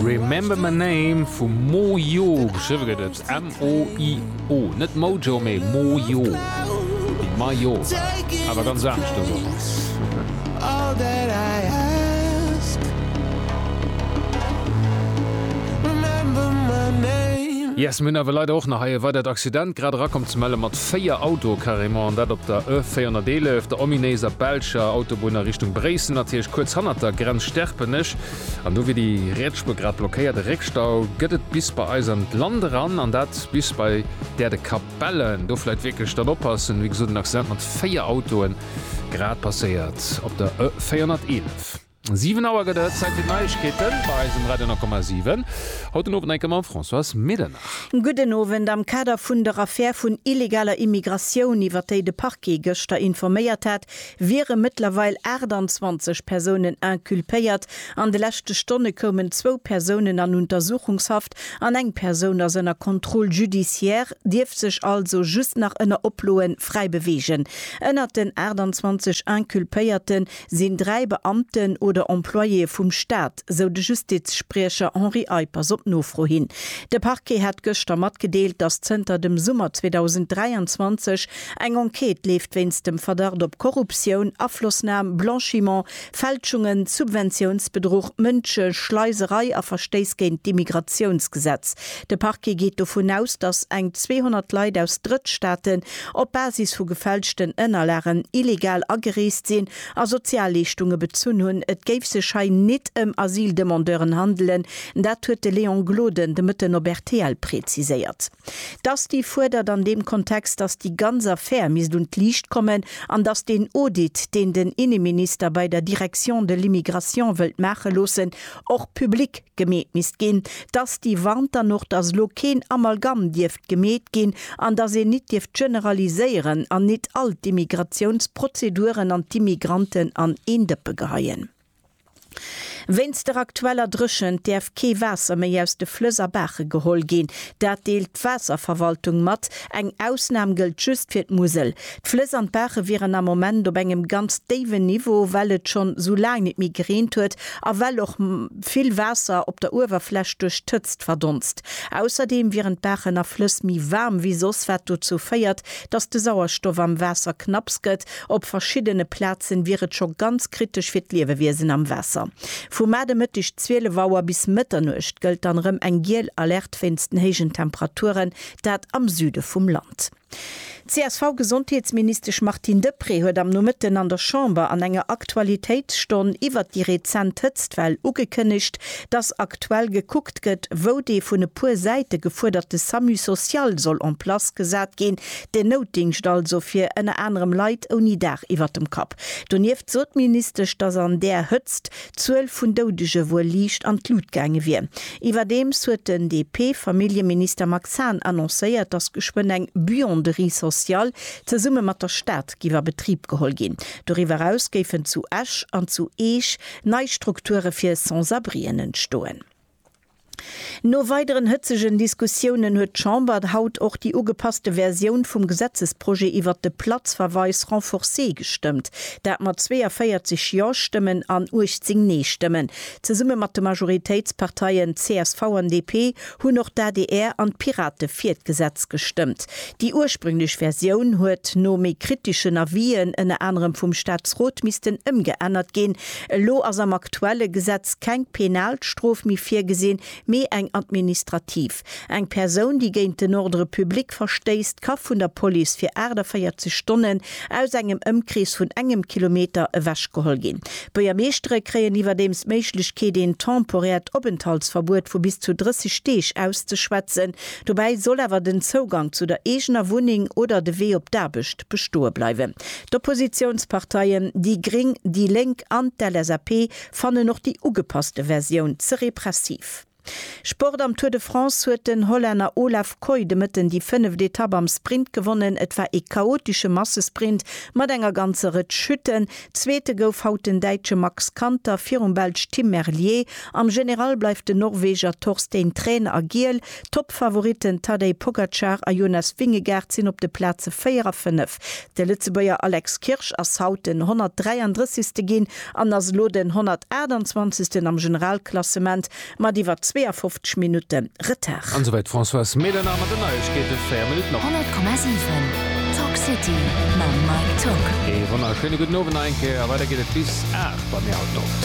Remember my name vu Mojo, geschriwwe gëtt et M-O-I-O, net Mojo, mee Mojo, wéi Maillot, awer ganz anescht dës Woch. Yes, mir hunn awer leider och nach hei e weidert Accident grad erakomm, ze melle mat Véier Autoe carrément, an dat op der E 411, der ominéiser belscher Autobunn a Richtung Bréissel, natierlech kuerz hannert der Grenz Sterpenech. An do wier déi riets Spuer grad blockéiert. E Réckstau gëtt et bis bei eis an d'Land eran, an dat bis bei där de Capellen. Do vläit wierklech dann oppassen. Wéi gesot, en Accident mat véier Autoe grad passéiert op der E 411. Siwen Auer gëtt et, Zäit fir d'Neiegkeeten bei eis um Radio 9,7. Haut den Owend enke mam Françoise Medernach. Gudden Owend. Am Kader vun der Affär vun illegaler Immigratioun, iwwer déi de Parquet gëschter informéiert hat, wiere mëttlerweil 28 Persounen inculpéiert. An de leschte Stonne koumen zwou Persounen an Untersuchungshaft an eng Persoun ass ënner Contrôle judiciaire, dierf sech also just nach ënner Oploe fräi beweegen. Ënnert den 28 Inculpéierte sinn dräi Beamten oder Employéë vum Staat, sou de Justizspriecher Henri Eippers op Nofro hin. De Parquet hat gëschter matgedeelt, datt zënter dem Summer 2023 eng Enquête leeft wéinst dem Verdacht op Korruptioun, Aflossnam, Blanchiment, Fälschungen, Subventiounsbedruch, Mënscheschleiserei a Verstéiss géint d'Immigratiounsgesetz. De Parquet geet dovun aus, datt eng 200 Leit aus Drëttstaaten op Basis vu gefälschten Ënnerlagen illegal agereest sinn a Sozialleeschtunge bezunn hunn. Et géif sech hei nit ëm Asyldemandeuren handelen, dat huet de Léon Gloden de Mëtten op rtl preziséiert. D'ASTI fuerdert an deem Kontext, datt déi ganz Affär misst un d'Liicht kommen an datt deen Audit, deen den Inneminister bei der Direction de l'immigration wëllt maache loossen, och public gemeet misst ginn. D'ASTI warnt dann och, datt elo keen Amalgamm dierf gemeet ginn an datt een nit dierft generaliséieren an nit all d'Immigratiounsprozeduren an d'Immigranten an een Dëppe geheien. Wéinst der aktueller Dréchent däerf kee Waasser méi aus de Flëss a Baache geholl ginn. Dat deelt d'Waasserverwaltung mat. Eng Ausnam gëllt just fir d'Musel. D'Flëss an d'Baache wieren am Moment op engem ganz déiwen Niveau, well et schonn esou laang nit méi gereent huet a well och vill Waasser op der Uewerfläch duerch d'Hëtzt verdonst. Ausserdeem wieren d'Baachen a Flëss méi waarm wéi soss, wat dozou féiert, datt de Sauerstoff am Waasser knapps gëtt. Op verschiddene Plazen wier et scho ganz kritesch fir d'Liewewiesen am Waasser. Vu mat e Mëtteg 12 Auer bis Mëtternuecht gëllt dann erëm eng giel Alerte wéinst den héijen Temperaturen, dat am Süde vum Land. D'CSV-Gesondheetsministesch Martine Deprez huet am Nomëtten an der Chamber an enger Aktualitéitsstonn iwwert déi rezent Hëtztwell ugekënnegt, dass aktuell gekuckt gëtt, wou dee vun e puer Säite gefuerderte Samu social soll en place gesat ginn, den Noutdingscht also fir ënner anerem Leit ouni Daach iwwert dem Kapp. Donieft sot d'Ministesch, dass an där Hëtzt d'Zuel vun Doudege wuel liicht an d'Lut gaange wier. Iwwerdeems huet den DP-Familljeminister Max Hahn annoncéiert, datt geschwënn eng Buanderie sociale zesumme mat der Stad géif a Betrib geholl ginn. Doriwwer eraus géifen zu Esch an zu Eech nei Strukture fir Sans-abrien entstoen. No weideren hëtzegen Diskussiounen huet d'Chamber haut och déi ugepasste Versioun vum Gesetzesprojet iwwert de Platzverweis renforcé gestëmmt, dat mat 42 Jo-Stëmmen an 18 Nee-Stëmmen. Zesumme mat de Majoritéitsparteien csv an DP hunn och d'ADR an d'Pirate fir d'Gesetz gestëmmt. Déi ursprünglech Versioun huet no méi kriteschen Avisen, ënner anerem vum Staatsrot, missten ëmgeännert ginn, Elo ass am aktuelle Gesetz keng penal Strof méi virgesinn, mee eng administrativ. Eng Persoun, déi géint den Ordre public verstéisst, ka vun der Police fir 48 Stonnen aus engem Ëmkrees vun engem Kilometer ewechgeholl ginn. D'Buergermeeschtere kréien iwwerdeems d'Méiglechkeet, een temporäert Openthaltsverbuet vu bis zu 30 Deeg auszeschwätzen. Dobäi soll awer den Zougang zu der eegener Wunneng oder de Wee op d'Aarbecht bestoe bleiwen. D'Oppositiounsparteien, déi gréng, déi lénk an d'LSAP, fannen och déi ugepasste Versioun ze repressiv. Sport Am Tour de France huet den Hollänner Olav Kooi de Mëtten déi fënneft Etapp am Sprint gewonnen. Et war ee chaotesche Massesprint mat enger ganzer Rëtsch Chutten. Zweete gouf haut den Däitsche Max Kanter virum Belsch Tim Merlier. Am General bleift den Norweger Torstein Træn a Giel. D'Toppfavoritten Tadej Pogacar a Jonas Vingegaard sinn op de Plaze 4 a 5. De Lëtzebuerger Alex Kirsch ass haut den 133. ginn an ass elo den 128. am Generalklassement mat iwwer 52 Minutte Retard. An esouwäit d'Françoise Mehlener mat den Neiegkeeten, 4 Minutten op. 100,7 Talk City mam Mike Togg. Ee wonnerschéine gudden Owend nach eng Kéier a weider geet et bis 8 bei mir haut Nowend.